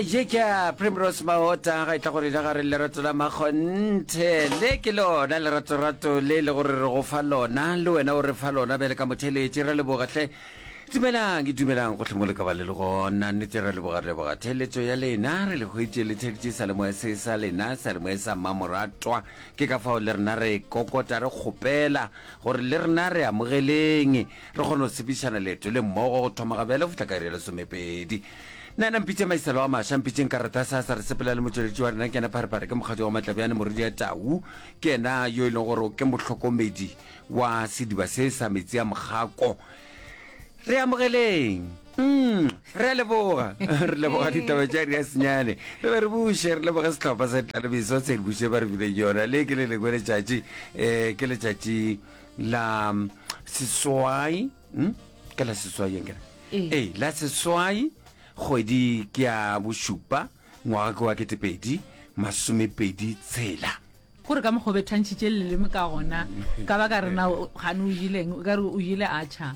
je ke a primrose maota ga e tla go rena ga re lerato la makgonthe le ke lona leratorato le e le gore re go fa lona le wena o re fa lona bjale ka motheletše ra lebogatlhe dumelang ke dumelang gotlhe mo le ka ba le le gona nnete ra leboga re leboga theletso ya lena re le hwetše le theletše salemoya se sa lena salemoya sa mmamoratwa ke ka fao le rena re kokota re kgopela gore le rena re amogeleng Re kgona go tshepišana leeto le mmogo go thoma gabjale go fihla ka iri ya lesomepedi. Na na mpitše maiselo a maša, mpitšeng ka rata sa sa re sepela le motšweletši wa rena ke yena Pharepare, ke mokgatšo wa Matlabjane moredi ya tau, ke yena yo e leng gore ke mohlokomedi wa sediba se sa metsi a mokgako. Re amogeleng. Mm, re a leboga. re leboga ditaba tša ri a senyane. Re be re buše, re leboge sehlopha sa ditlalebiso se re buše ba re bileng yona. Le ke le lengwe letšatši, um ke letšatši la seswai hm? ke la seswai yang kere Ee. ee la seswai kgwedi ke ya bošupa ngwaga ke wa ketepedi masomepedi tshela gore ka mokgwa o bethantšhitše leleme ka gona ka ba ka rena gane o jeleng o ka re o jele a tšha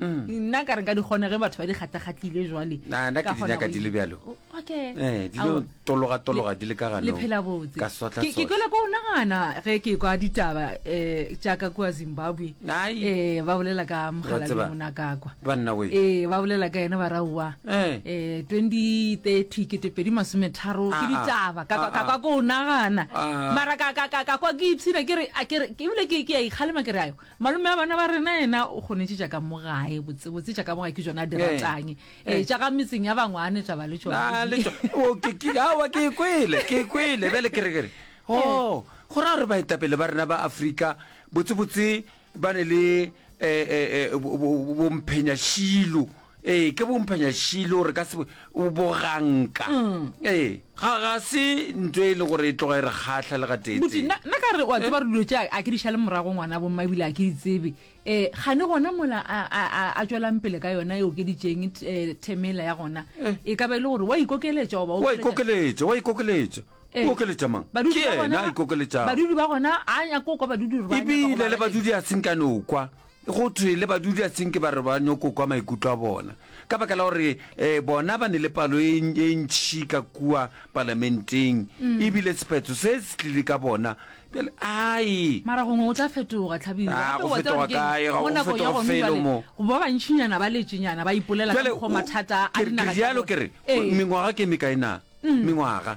nna ka re ka di kgona ge batho ba di kgatlakgatlile jwale Na- na ke di nyaka di le bjalo okay Eh, di lo tologatologa di le ka gano, le phela botse ka sotla Ke- ke sotla. kwela ko nagana ge ke kwa ditaba um jaaka kua zimbabwe Ai. um ba bolela ka Wa mogalabi tseba, monakakwa banna we. ee ba bolela ka ena ba raowa Eh. um twenty thirty ketepedi masometharo ke Ah, ah. ditaba ka kwa- Ah, ka ah. kwa ko o nagana Ah. mara ka- ka ka- ka kwa ke ipshina ke re a ke re- ke ebile ke ke a ikgalema ke re ayo Malome wa bana ba rena yena o kgonetše tša ka mo gae botsebotse tša ka mo gae ke tšona a di Eh. ratang Eh. ee tša ga metseng ya bangwane taba le Ah, le tšona tšo- o, ke- ke- aowa, ke e kwele ke e kwele bjale ke re ke re o Oh, go raya gore baetapele ba rena ba afrika botsebotse ba ne le eh, eh, eh, bo- bo- bo- bomphenyašilo ee ke bomphanya šilo re ka se o boganka ee ga ga se ntho e le gore e tloga e re kgatlha le ga Moti, teetsee nna nna ka re wa tseba re dilo tša a ke di šale morago ngwana bo mma ebile a ke di tsebe um gane gona mola a a a a tšwelang pele ka yona e okeditšeng t- eh, themela ya gona e ka ba e le gore wa ikokeletša goba wa ikokeletša wa ikokeletša Eh, o okeletša mang ke badudi ba yena a gona- ikokeletšago badudi ba gona a nyako kwa badudi gore ba nyaka go ebile le ba badudi a senkane o kwa Go thwe le badudiatsinke ba re ba nyoko kwa maikutlo a bona ka baka la gore um bona ba ne le palo e, e ntšhi ka kua palamenteng mm. ebile sephetho se se tlile ka bona bjale ai mara gongwe o tla fetoga tlhabirofelo mo go ba bantšhinyana ba letšenyana ba ipolela ka mokgwa mathata a dinaga jalo ke re ee. mengwaga ke mekaena mm. mengwaga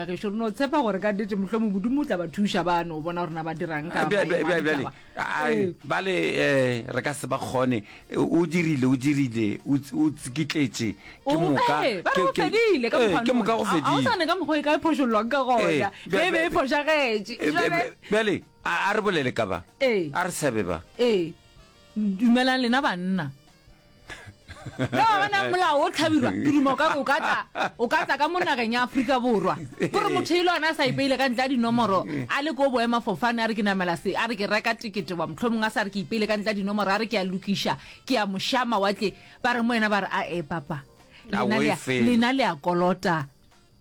Gešo, re no tshepa gore ka nnete mohlomong Modimo o tla ba thuša ba no bona gore na ba dirang ka Bja- bja- maemo a bja- bjale ditaba. a- Ee. a- bale um re ka se ba kgone o dirile o dirile o tsi- o tsikitletše ke O- moka ee, ba re ke- go ke- fedile ka ee, mokgwa ke moka go none. A- a o fedile sane ka mokgwa e ka e phošollwang ka gona Ee, bja- ge e be e bja- fošagetše Eh, Jwale- bja- bjale a a re bolele ka ba Ee. a re sabe ba ee dumelang lena banna le wa bonang molao o tlhabirwa ke duma o ka re o ka tla o ka tla ka mo nageng ya aforika borwa gore motho e le one a sa ipeile ka ntle a dinomoro a le ko boema fofane a re ke namela se a re ke reka tekete wa motlho mongwe a sa re ke ipeile ka ntle a dinomoro a re ke a lokiša ke ya mošama wa tle ba re mo ena ba re a e papa lena le ya kolota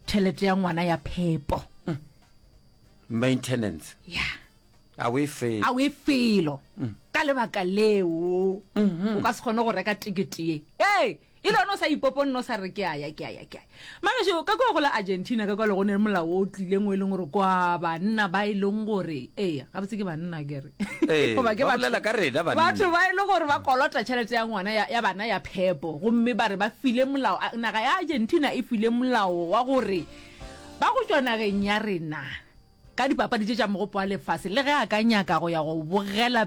tšhelete ya ngwana ya phepo maintenance ya yeah. A o e felo. A o e felo. Ka lebaka leo, o ka se kgone go reka tikete ye. Ee, e le gona o sa ipoponne o sa re ke a ya, ke a ya, ke a ya. Mangešo, ka kwa go la Argentina, ka kwa le gone molao o tlileng o e leng gore kwa banna ba e leng gore, ee, gabotse ke banna ke re, Ee, goba ke ba batho- bolela ka rena banna. batho ba e leng gore ba kolota tšhelete ya ngwana ya, ya bana ya phepo gomme ba re ba file molao a- naga ya Argentina e file molao wa gore ba go tšwa nageng ya rena ka dipapadi tše tša Mogopo wa Lefase le ge a ka nyaka go ya go bogela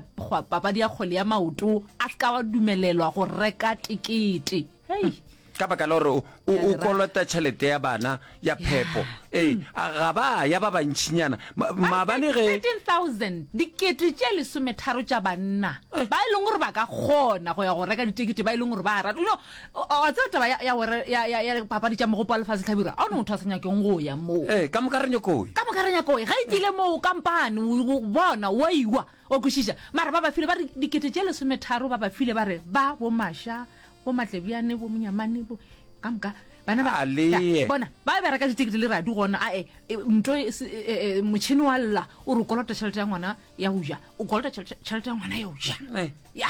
papadi ya kgwele ya maoto a se ka wa dumelelwa go reka tekete. Hei! ka baka la gore o, o, o kolota tšhelete ya bana ya phepo ee mm. a ga ba ya ba bantšhinyana Ma- maabane ge 13000 dikete tše lesometharo tša banna eh. ba e leng gore ba ka kgona go ya go reka ditekete ba e leng gore ba rata no a tseba taba ya gore ya papadi tša mogopo wa lefatshe tlhabirwa a o ne motho a sa nyakeng go ya moo ee ka moka re nyakoi ka moka re nyakoi ga e tsile moo kampane bona wa iwa o kwešiša mara ba ba file ba re dikete tše lesometharo ba ba file ba re ba bomaša bomatlebjane bomonyamane ka moka bana ba bona ba bereka ditekete le radi gona ae e, nto e, e, motšhini wa lla o re kolota tšhelete ya ngwana ya go ja o kolota tšhelete ya ngwana ya go ja ya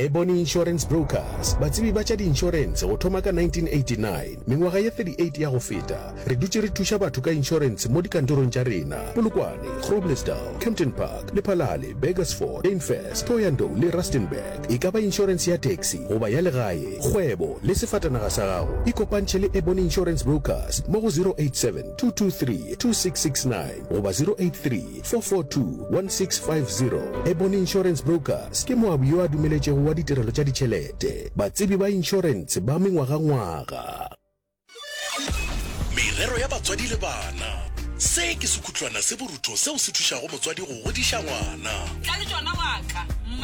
Ebony Insurance Brokers, batsebi ba tša diinšorense go thoma ka 1989. Mengwaga ye 38 ya go feta, re dutše re thuša batho ka inšorense mo dikantorong tša rena, Polokwane, Groblersdal, Kempton Park, Lephalale, Burgersfort, Dainfers, Thohoyandou le Rustenburg. E ka ba inšorense ya taxi goba ya legae, kgwebo le sefatanaga sa gago, ikopantšhe le Ebony Insurance Brokers mo go 087 223 2669 goba 083 442165 Ebony Insurance Brokers ke moabi yo a dumeletšego wa ditirelo tša ditšhelete, batsebi ba inšorentshe ba mengwagangwaga. Merero ya batswadi le bana. Se ke sekhutlwana se borutho seo se thušago motswadi go godiša ngwana. Tla le tšona wa ka.